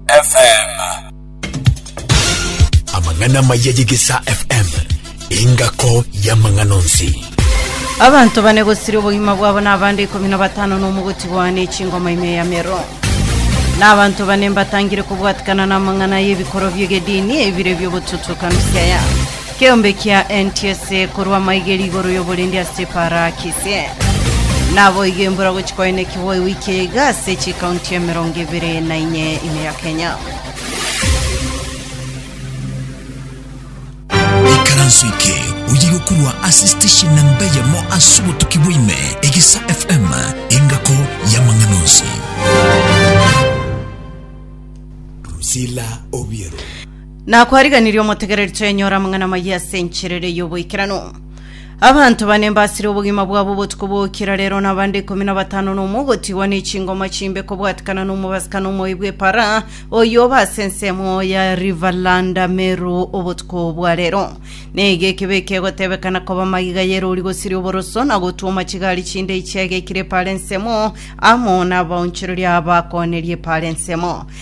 FM. Amang'ana amaya y'Egesaa FM, engako y'amang'ana onsi. abanto bane gosiria obogima bwabo na abande ikomi na batano na omogotigwa ne chingoma ime ya mero na abanto bane mbatangire kobwatikana na amang'ana y'ebikorwa bi'egedini ebire bi'ogotutuka misiaya Keombe kia enti ase korwa amaigeri igoro y'oborindi ase Parakisi. Naboigo embura gochia koenekigwa ewiki eye iga ase chikaunti emerongo ebere na inye ime ya Kenya. Ikaranso eke oyire okorwa ase station namba eyemo ase obotuki bwa ime, Egesa FM, engako y'amang'ana onsi. Drusilla Obiero. Na kwariganirie omotegereri twenyora amang'ana amayia ase encherere y'oboikeranu. Abanto bane mbasire obogima bwabo obotuko bw'okira rero na abande ikomi na batano na omo ogotigwa ne chingoma chimbe kobwatikana na omobasikana omoyi bw'epara oyo oba ase ensemo ya Rivalanda Meru obotuko bwa rero. Neiga ekebe ekegotebekana koba magiga y'erori gosiria oboroso na gotwoma chigari chinde chiagekire epara ensemo amo na abaonchoreria abakooneria epara ensemo.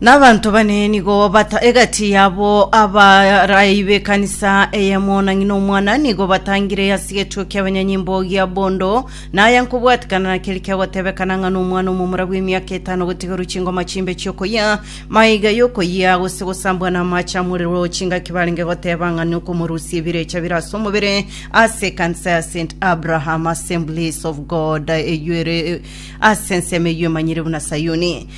Nabanto bane nigo bata egati yabo abarai b'ekanisa eyemo na ng'ina omwana nigo batangire ase egetuo ki'abanyanyimbo gia bondo na aya nkobwatikana na keri kiagotebekana ng'a n'omwana omomura bw'emiaka etano gotigerwa chingoma chimbe chi'okoyia maiga y'okoyia gose gosambwa na amache amorero chingaki barenge goteba ng'a nokomorusia ebirecha bire ase omobere ase ekanisa ya St Abraham Assemblies of God eyuere ase ensemo eyio emanyire buna Sayuni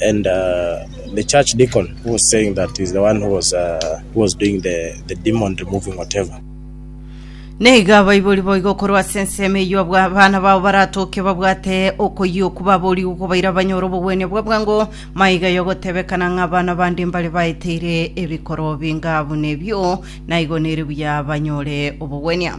And uh, the church deacon who was saying that is the one who was uh, who was doing the the demon removing whatever. neiga abaibori boigo korwa ase ensemo eyio abwa abana bao baratoke babwate okoyia oku baborigwe kobaira banyore obogwenia bwa bwango maiga yogotebekana ng'a abana bande mbare baeteire ebikoro binga buna ebio naigo nere buya banyore obogwenia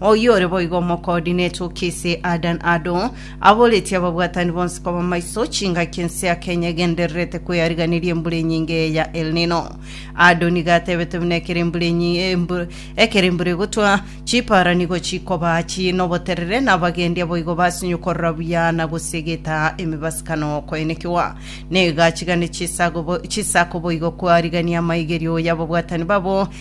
Oyio ore boigo omokoordinate o KCA Adan Ado aboretie ababwatani bonsi koba maiso chingaki ense ya Kenya egendererete kweyariganeria embura enyinge eya El Nino. Ado nigo atebete buna ekero embura enyi- embu- ekero embura egotwa chipara nigo chikoba chii noboterere na abagendia boigo basinyo korora buya na gose egeta emibasakano koenekiwa negachi gane chisako bo- chisako boigo koarigania amaigerio y'ababwatani babo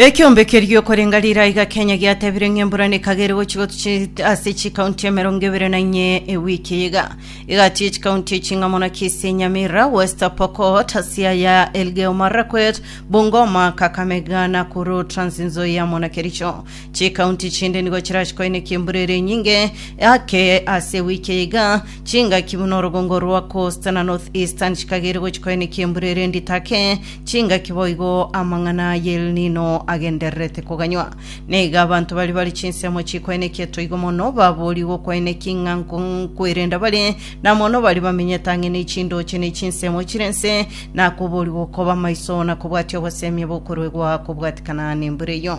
Ekeombe keria okorenga rirai gakenya giatebire ng'a embura nekagere gochia gotuchit ase chikaunti emerongo ebere na inye ewiki eye iga egatiye chikaunti echi ng'a muna Kisii, Nyamira, West Pokot, Siaya, Elgeyo Marakwet, Bungoma, Kakamega, Nakuru, Trans Nzoia muna Kericho. Chikaunti chinde nigo chirachi koinekia embura ere enyinge ake ase ewiki eye iga chingaki buna orogongo rwa Coast na North Eastern chikagere gochia koinekia embura ere endito ake Chingaki boigo amang'ana a y'El Nino agendererete koganywa. Nigo abanto baria bare chinsemo chikwaenekia etoigo mono baboorigwe okwaenekia ing'anko nkwerenda bare, na mono baria bamenyete ang'e ne chindooche ne chinsemo chire ense, na koboorigwa okoba maiso na kobwatia oboseemia bokoruegwa kobwatikana nembura eyo.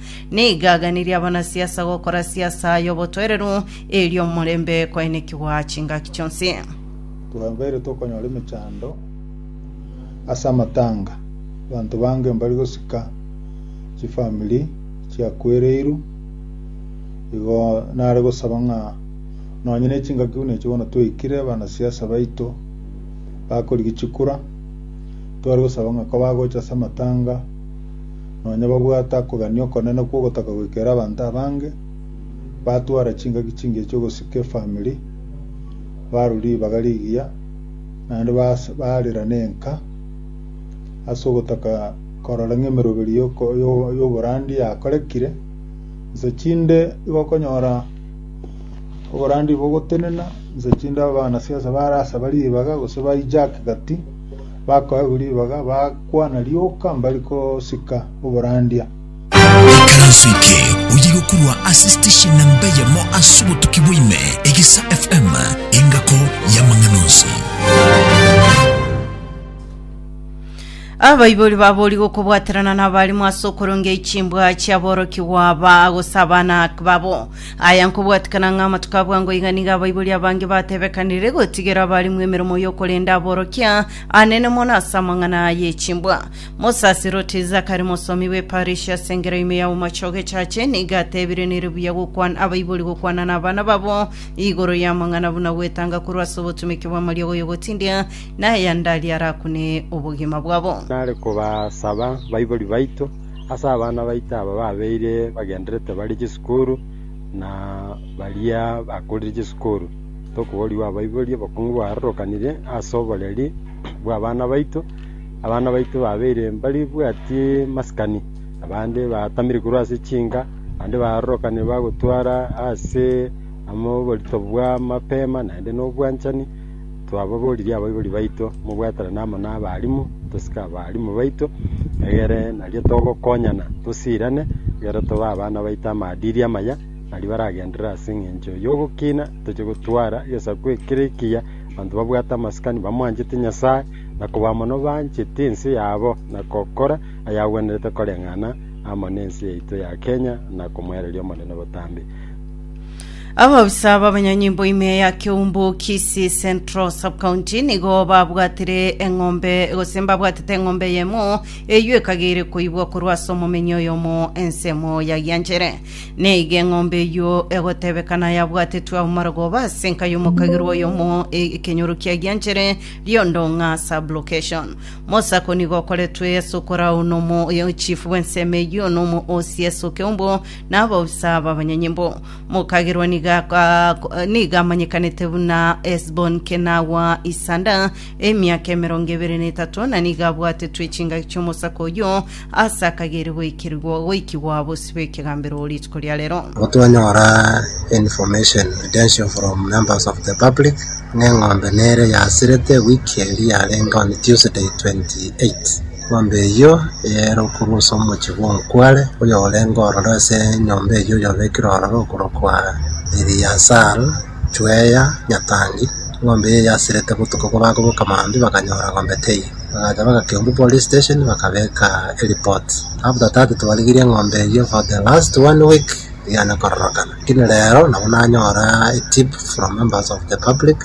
Nigo aganirie abanasiasa gokora siasa y'obotoereru, erio omorembe kwaenekigwa chingaki chionsi. Twabeire tokonyora emechando ase amatanga, abanto bange mbari gosika chifamiri chiakwereirwe, igo nare gosaba ng'a nonye ne chingaki buna echio bono twaikire abanasiasa baito bakorigia chikura, tware gosaba ng'a kobagocha ase amatanga, nonya babwate akogania okonene kw'ogotaka goikera abanto abange, batwara chingaki chingiya chi'ogosika efamiri, barwa ribaga rigiya, naende bas- barera nenka ase ogotaka korora ng'a emeroberi y'oko- y'o- y'oborandi yakorekire. Inse chinde igo okonyora oborandi bogotenena, inse chinde abanasiasa barasaba ribaga gose ba-hijack gati. Bakoegwa ribaga, bakwana rioka mbari gosika oborandia. Ekeranso eke oyiga korwa ase station namba eyemo ase obotuki bwa ime, Egesa FM, engako y'amang'ana onsi. abaibori babori gokobwaterana nabarimo ase okorongeria chimbwa chiaborokigwa ba gose abana babo Aya nkobwatikana ng'a amatuko a bwango iga nigo abaibori abange batebekanire gotigera abarimwe emeremo y'okorenda aborokia anene mono ase amang'ana aya echimbwa. Mosaserdoti Zakari mosomi bw'eparishi ase engera ime ya Bomachoge Church nigo atebire nere buya gokwana abaibori gokwana n'abana babo igoro y'amang'ana buna gwetanga korwa ase obotumeki bw'amariogo y'ogotindia na aya ndari arakune obogima bwabo. Nare kobasaba baibori baito ase abana baito aba babeire bagenderete bare chisukuru. koru, na baria bakorire chisukuru, tokoborigwa abaibori, obokungu bwarorokanire ase oboreri bw'abana baito, abana baito babeire mbari bwati masikani, abande batamire korwa ase chinka, abande barorokanire bagotwara ase oborito bwa mapema naende na obwanchani. Twababoririe abaibori baito, mobwaterane amo nabalimu, tosike abalimu baito, egere nario togokonyana tosirane, egere tobe abana baito amadiri amaya, nario baragenderere ase engencho y'ogokina, toche gotwara egesaku ekere ekiya, abanto babwate amasikani bamwanchete Nyasae, na koba amo nobancheti ense yabo, na gokora ayagwenerete koreng'ana amo nense yaito ya Kenya, na komoereria Omonene botambe. Ababisa b'abanyanyimbo ime ya Keumbu Kisii Central Sub-County nigo babwatire eng'ombe gose mbabwatete eng'ombe yemo eyio ekagere koibwa korwa ase omomenyi oyomo ensemo ya Gianchere. Neiga eng'ombe eyio egotebekana yabwatetwe ao marogoba ase enka y'omokagirwa oyomo e- ekenyoro kia Gianchere Riondong'a Sub-Location. Mosako nigo okoretwe ase okoraao nomo chief bw'ensemo eyio nomo OCS o Keumbu na abaofisa b'abanyanyimbo. Mokagerwa nigo aka- nigo amanyekanete buna Hesbon Kenawa Isanda emiaka emerongo ebere na etato, na nigo abwatetwe chingaki chi'omosako oyio ase akagere goikerigwa goikigwa bosio bw'ekegambero rituko ria rero. Abo twanyora information credential from members of the public ng'a eng'ombe nere yasirete wiki eria yarenge on Tuesday 28 Enyomba eyio eyaeirwe korwa ase omochie bw'omokuare, oyorenge ororo ase enyomba eyio oyobekire ororo okorokwa Eliasar, Chuea, nyatangi. Enyomba eyio yasirete botuko obo bakoboka mambia bakanyora enyomba teiyo. Bagacha bagakeumbu police station bakabeka ereport. After that twarigirie enyomba eyio for the last one week tiyane kororokana. Lakini rero nabo nanyora etip from members of the public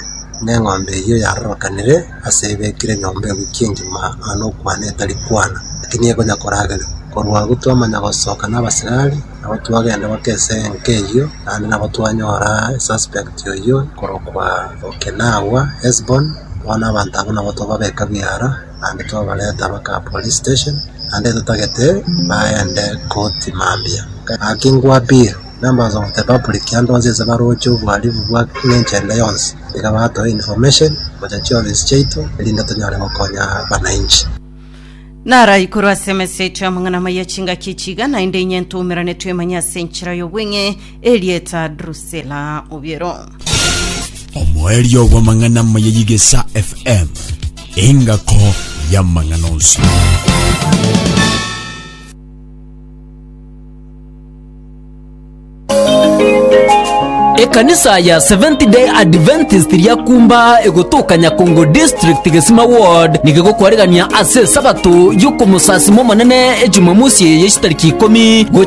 ng'a enyomba eyio yarorokanire. ase ebekire nyomba eng'uki engima aa nokwana etari kwana, naki nigo ekonya koragerwa. Korwa agwo twamanya gosoka nabasigari, nabo twagenda goika ense enke eyio, naende nabo twanyora esuspect oyio korokwa Okinawa, Hesbon, bono abanto abwo nabo twababeka biara, naende twabareta baka police station, naende totagete baende koti mambia. Gaki ngwa appeal. Numbers of the public ande onsi inse baroche obohalifu bwa ng'encho ende yonsi, iga batoe information gocha chiofisi chiaito erinde tonyare gokonya abananchi. Naro aikuru ase emeseti amang'ana amaya chingaki echi iga naende inye ntoumerane twemanye ase enchera y'obweng'e erieta Drusilla Obiero. Omoerio bw'amang'ana amaya y'Igesa FM, engako y'amang'ana onsi. Ekanisa ya Seventh Day Adventist ria Kumba egotoka Nyakongo District, Gesima Ward, nigegokoregania ase Esabato y'okomosasima Omonene Ejumamosi eye chitariki ikomi gochia